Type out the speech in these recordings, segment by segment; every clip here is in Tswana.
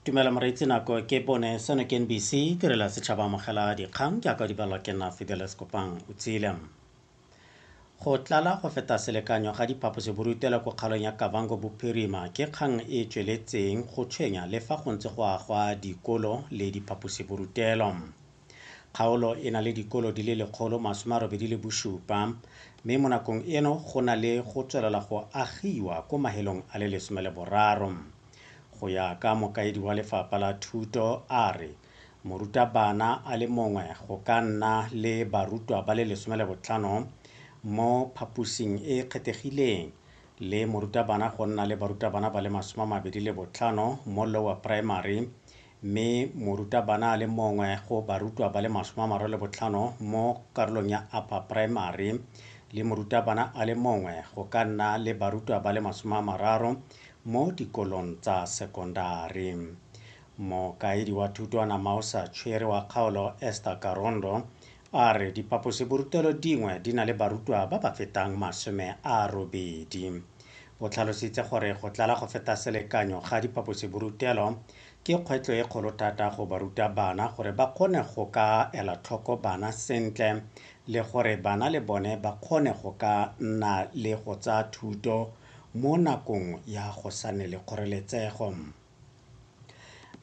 tumelo moreitsi nako ke bone seno ke nbc tirela setšhaba amogela dikgang ke aka dibalwa ke nna fideles kopang o tsile go tlala go feta selekanyo ga diphaposiborutelo ko kgaolong ya kavango bophirima ke kgang e e tsweletseng go tshwenya le fa go ntse go agwa dikolo le diphaposiborutelo Kgaolo e na le dikolo di le lekgolo masome a robedi le bosupa mme mo nakong eno go na le go tswelela go agiwa ko mahelong a le lesome le boraro. Go ya ka mokaedi wa lefapha la thuto a re morutabana a le mongwe go ka nna le barutwa ba le lesome le botlhano mo phaposing e e kgethegileng le morutabana go nna le barutabana ba le masome a mabedi le botlhano mo lower primary mme morutabana a le mongwe go barutwa ba le masome a mararo le botlhano mo karolong ya upper primary le morutabana a le mongwe go ka nna le barutwa ba le masome a mararo mo dikolong tsa sekondari mokaedi wa thutwana mausa tshwere wa kgaolo esther karondo a re diphaposiborutelo dingwe di na le barutwa ba ba fetang masome a robedi. O tlhalositse gore go tlala go feta selekanyo ga diphaposiborutelo ke kgwetlho e kgolo thata go baruta bana gore ba kgone go ka ela tlhoko bana sentle le gore bana le bone ba kgone go ka nna le go tsaya thuto mo nakong ya go sa nne le kgoreletsego.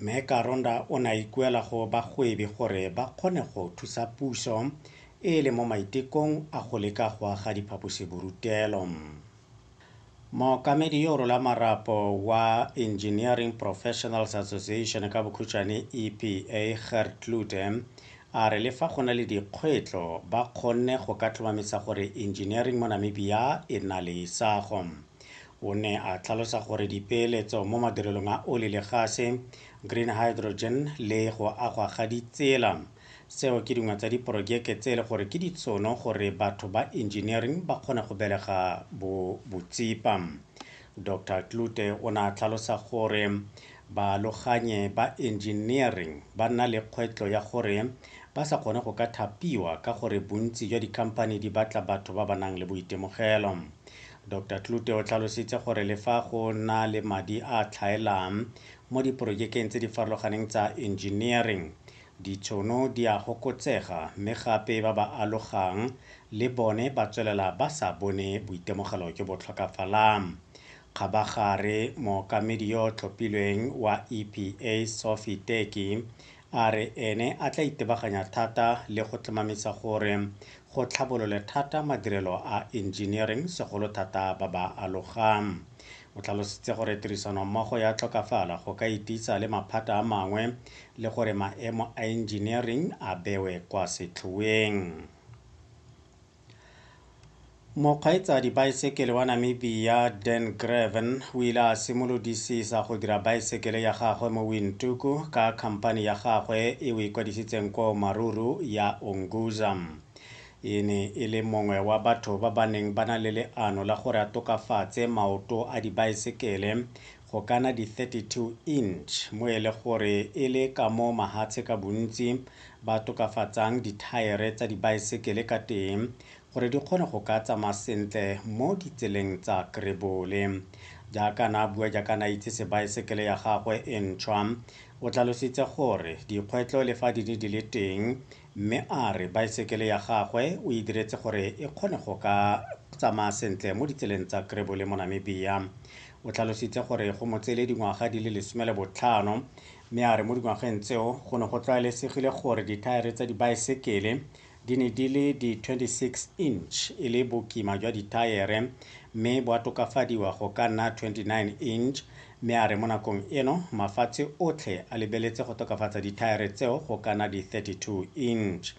Mme Karonda o ne a ikuela go bagwebi gore ba kgone go thusa puso e e leng mo maitekong a go leka go aga diphaposiborutelo. Mookamedi yo o rola marapo wa Engineering Professionals Association, ka bokhutshwane EPA, Gert Klute, a re le fa go na le dikgwetlo, ba kgonne go ka tlhomamisa gore engineering mo Namibia e nna le isago. O ne a tlhalosa gore dipeeletso mo madirelong a oli le gase, green hydrogen le go agwa ga ditsela tseo ke dingwe tsa diporojeke tse e le gore ke ditshono gore batho ba engineering ba kgone go belega bo botsipa. Dr Klute o ne a tlhalosa gore baaloganye ba engineering ba nna le kgwetlo ya gore ba sa kgone go ka thapiwa ka gore bontsi jwa dikhamphani di batla batho ba ba nang le boitemogelo. Doctor Klute o tlhalositse gore le fa go na le madi a a tlhaelang mo diporojekeng tse di farologaneng tsa engineering, ditshono di a gokotsega mme gape ba ba alogang le bone ba tswelela ba sa bone boitemogelo jo bo tlhokafalang. Kgabagare, mookamedi yo o tlhophilweng wa EPA, Sophie Teki, a re ene a tla itebaganya thata le go tlhomamisa gore go tlhabolole thata madirelo a engineering segolo thata ba ba alogang. O tlhalositse gore tirisanommogo ya tlhokafala go ka ititsa le maphata a mangwe le gore maemo a engineering a bewe kwa setlhoeng. Mokgweetsa baesekele wa Namibia Dan Graven o ile a simolodisisa go dira baesekele ya gagwe mo Windhoek ka khampani ya gagwe e o ikwadisitseng ko Maruru ya Unguza. E ne e le mongwe wa batho ba ba neng ba na le leano la gore a tokafatse maoto a dibaesekele go ka na di-32 inch mo e le gore e le ka mo mahatshe ka bontsi ba tokafatsang dithaere tsa dibaesekele ka teng gore di kgone go ka tsamaya sentle mo ditseleng tsa Krebole. Jaaka na bua jaaka na itse sebaesekele ya gagwe e ntšhwa, o tlalositse gore dikgwetlo le fa di ne di le teng Mme a re baesekele ya gagwe o e diretse gore e kgone go ka tsamaya sentle mo ditseleng tsa Krebu le Monamibia. O tlhalositse gore go mo tseele dingwaga di le lesome le botlhano mme a re mo dingwageng tseo go ne go tlwaelesegile gore dithaere tsa dibaesekele di ne di le di 26 inch e le bokima jwa dithaere mme bo a tokafadiwa go ka nna 29 inch mme a re mo nakong eno mafatshe otlhe a lebeletse go tokafatsa dithaere tseo go ka na di 32 inch.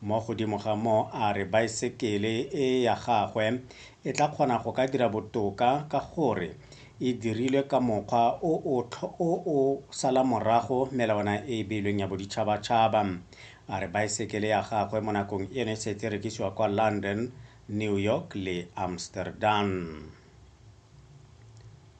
Mo godimo ga moo a re baesekele e ya gagwe e tla kgona go ka dira botoka ka gore e dirilwe ka mokgwa o o o o sala morago melawana e e beilweng ya boditšhabatšhaba. A re baesekele ya gagwe mo nakong eno e setse e rekisiwa kwa London, New York le Amsterdam.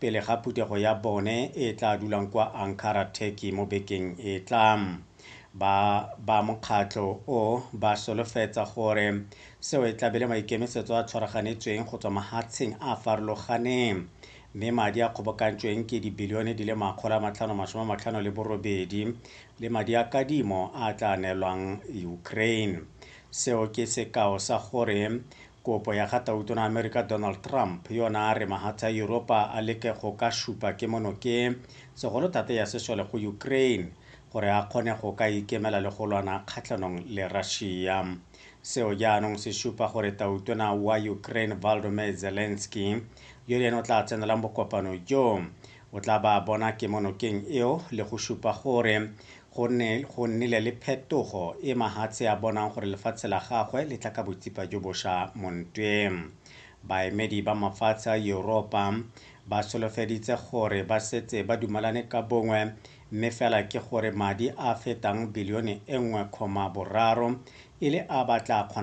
pele ga phuthego ya bone e e tla dulang kwa Ankara, Turkey mo bekeng e e tlang. Ba ba mokgatlho o ba solofetsa gore seo e tlabe le maikemisetso a tshwaraganetsweng go tswa mahatsheng a farologaneng mme madi a kgobokantsweng ke dibilione di le makgolo a matlhano masome a matlhano le borobedi le madi a kadimo a tla neelwang Ukraine. Seo ke sekao sa gore Kopo ya ga Tautona wa Amerika Donald Trump yo ne a re mahatshe a Yuropa a leke go ka supa kemonokeng, segolo thata ya sesole go Ukraine, gore a kgone go ka ikemela le go lwana kgatlhanong le Russia. Seo jaanong se supa gore Tautona wa Ukraine Volodymyr Zelensky, yo le ene o tla tsenelang bokopano jo, O tla ba bona kemonokeng eo le go supa gore go ne go nnile le phetogo e Mahatshe a bonang gore lefatshe la gagwe le tla ka botsipa jo bosha mo ntweng. Baemedi ba mafatshe a Yuropa ba solofeditse gore ba setse ba dumalane ka bongwe mme fela ke gore madi a a fetang bilione e nngwe kgoma boraro e le a ba tla